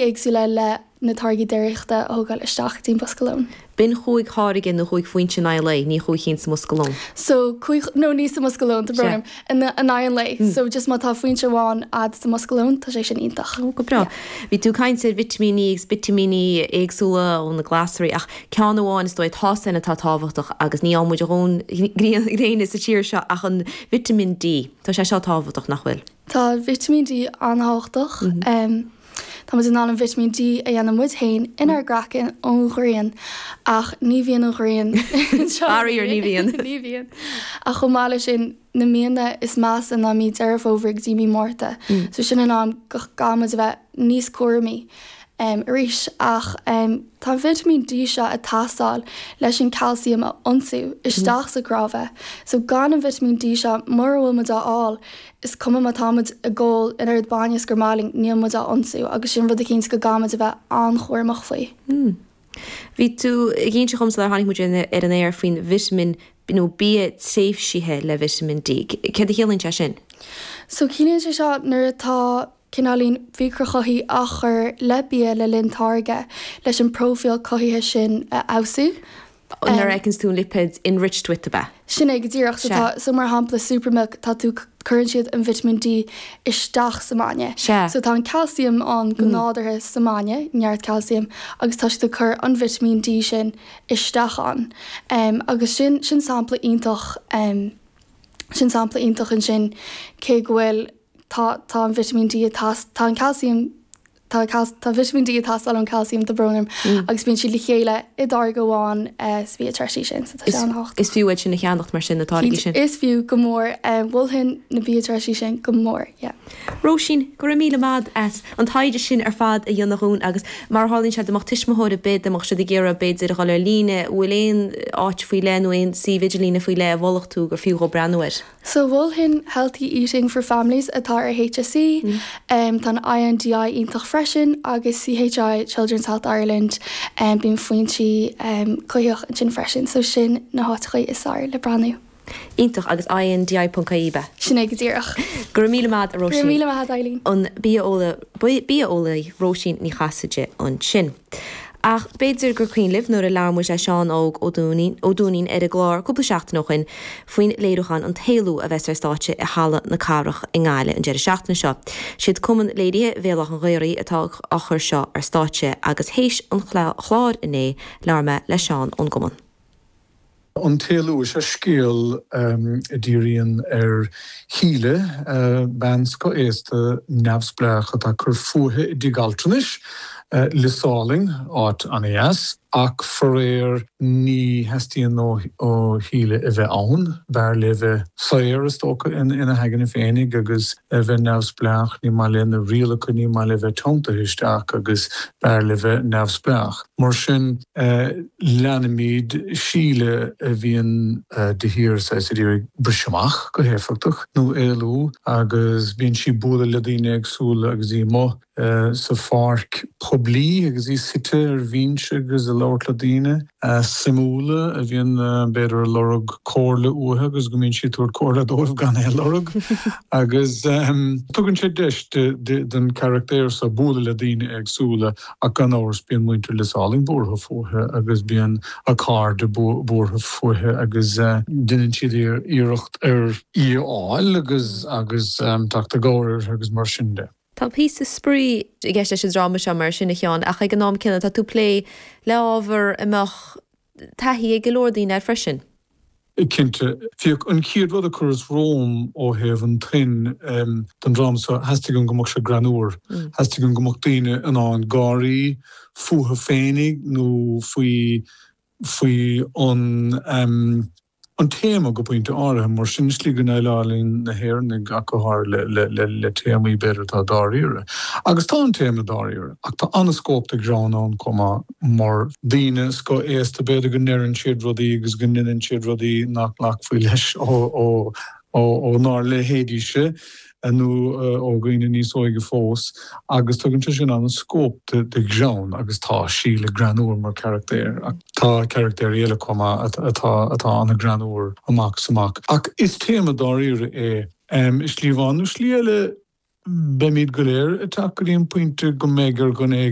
éagsúla le na táirgí déiríochta a thógáil isteach tríd an mbosca lóin. B'in chúig tháirge nó chúig foinse in aghaidh an lae, ní chúig chinn sa mbosca lóin. So cúig nó ní sa mbosca lóin, tá brón orm, in aghaidh an lae. So just má tá foinse amháin a'd sa mbosca lóin, tá sé sin iontach. Go breá. Bhí tú ag caint ar vitimíní agus vitimíní éagsúla ó na glasraí ach ceann amháin is dóigh atá san atá tábhachtach agus ní fhaigheann muid a ndóthain gréine sa tír seo ach an vitamin D. Tá sé seo tábhachtach, nach bhfuil? Tá vitimín D an-tábhachtach. Táimid in ann an vitimín D a dhéanamh muid féin inár gcraiceann ón ghrian, ach ní bhíonn an ghrian anseo. Faraor, ní bhíonn. Ní bhíonn. Ach chomh maith leis sin, na míonna is measa ná mí Deireadh Fómhair go dtí mí Márta, so sin an am go gcaithfidh muid a bheith níos cúramaí arís. Ach tá an vitimín D seo ag teastáil leis an calcium a ionsú isteach sa gcnáimh, so gan an vitimín D seo, mura bhfuil muid á fháil, Is cuma má táimid ag ól an oiread bainne is gur maith linn, níl muid á ionsú agus sin rud eicínt go gcaithfimid a bheith an-chúramach faoi. Mmm. Bhí tú ag inse dhom sular tháinig muid ar an aer faoin vitimín, nó bia treisithe le vitimín D. Céard a chiallaíonn sé sin? So ciallaíonn sé seo nuair atá cineáilín micreachothaithigh á chur le bia le linn táirgeadh, leis an bpróifíl cothaithe sin a fheabhsú. Sin é go díreach. So tá, so mar shampla Supermilk, tá tú, cuireann siad an vitimín D isteach sa mbainne. So tá an calcium ann go nádúrtha sa mbainne, neart calcium, agus tá siad ag cur an vitimín D sin isteach ann. Agus sin, sin sampla iontach, sin sampla iontach ansin, cé go bhfuil, Tá, tá an vitimín D ag tas, tá an calciam, tá calc, tá an vitimín D ag teastáil ón calciam tá brón orm agus bíonn siad le chéile i dtáirge amháin sa mbia treisithe sin, so tá sé an-tábhachtach. Is fiú é sin a cheannacht mar sin, na táirgí sin. Is fiú, go mór. Mholfainn na bia treisithe sin go mór, yeah. Róisín, go raibh míle maith agat as an taighde sin ar fad a dhéanamh dhúinn agus mar a tharlaíonn sé dá mbeadh tuismitheoir ar bith, dá mbeadh siad ag iarraidh b'fhéidir dhul ar líne, bhfuil aon áit faoi leith nó aon suíomh idirlíne faoi leith a mholfadh tú gur fiú dhó breathnú air? So mholfainn Healthy Eating for Families atá ar HSE, tá an INDI iontach freisin agus CHI, Children's Health Ireland, bíonn foinsí cothaithe ansin freisin, so sin na háiteachaí is fearr le breathnú. Iontach, agus INDI ponc IE ab ea? Sin é go díreach. Go raibh míle maith a'd, a Róisín. Go raibh míle maith a'd, a Eibhlín. An bia-eolaí Róisín Ní Chasaide ansin. Ach b'fhéidir gur cuimhin libh nuair a labhair muid le Seán Óg Ó Duinnín, Ó Dúinín, ar an gclár cúpla seachtain ó shoin faoin léiriúchán An tÉalú a bheas ar stáitse i Halla na Cathrach i nGaillimh an deireadh seachtaine seo. Siad Cumann Léirithe Bhéal Átha'n Ghaorthaidh atá á chur seo ar stáitse agus théis an chláir inné labhair mé le Seán ón gcumann. An tÉalú is ea scéal a dhíríonn ar Shíle, bean scothaosta neamhspleách atá ag cur fúithi i dtigh altranais, Lios Álainn, áit an-deas, ach faraor ní theastaíonn ó Shíle a bheith ann. B'fhearr léi bheith saor, is dócha, ina haigne féinig agus bheith neamhspleách. Ní maith léi na rialacha, ní maith léi bheith teanntaithe istigh agus b'fhearr léi bheith neamhspleách. Mar sin. Leanaimid Síle a bhíonn de shíor saghas ag iarraidh briseadh amach go héifeachtach, nó éalú, agus bíonn sí ag bualadh le daoine éagsúla agus í amuigh sa pháirc poiblí agus í suite ar bhinse agus ag labhairt le daoine suimiúla a bhíonn b'fhéidir ag lorg comhairle uaithi agus go mbíonn sí ag tabhairt comhairle dóibh gan é a lorg agus tugann sé deis don charachtéir seo bualadh le daoine éagsúla Ach gan amhras bíonn muintir Lios Álainn buartha fúithi agus bíonn a cairde buartha fúithi agus déanann siad iarracht ar í a fháil agus agus teacht i gcabhair uirthi agus mar sin de. Tá píosa spraoi i gceist leis an dráma seo mar sin a Sheáin ach ag an am céanna tá tú ag plé le hábhar a mbeadh, taithí ag go leor daoine air freisin. Cinnte, b'é an chéad rud a chuireas romham ó thaobh an tuin don dráma seo, theastaigh uaim go mbeadh sé greannmhar, theastaigh uaim go mbeadh daoine in ann gáirí, fúthu féinig nó faoi faoi an. an téama go pointe áirithe, mar sin, i slí go ndéileálann na hÉireannaigh ach go háirithe le téamaí, b'fhéidir, atá dáiríre. Agus tá an téama dáiríre, ach tá an-scóip do ghreann ann chomh maith, mar. Daoine scothaosta, b'fhéidir, go ndeireann siad rudaí agus go ndéanann siad rudaí nach nglacfaí leis ónár leithéidíse. nó ó dhaoine níos óige fós, agus tugann sé sin an-scóip do ghreann agus tá Síle greannmhar mar charachtéir ach tá carachtéir eile chomh maith atá ana-ghreannmhar amach is amach. Ach is téama dáiríre é i slí amháin nó slí eile. Beimid go léir ag teacht go dtí an pointe go mbeidh ar dhuine éigin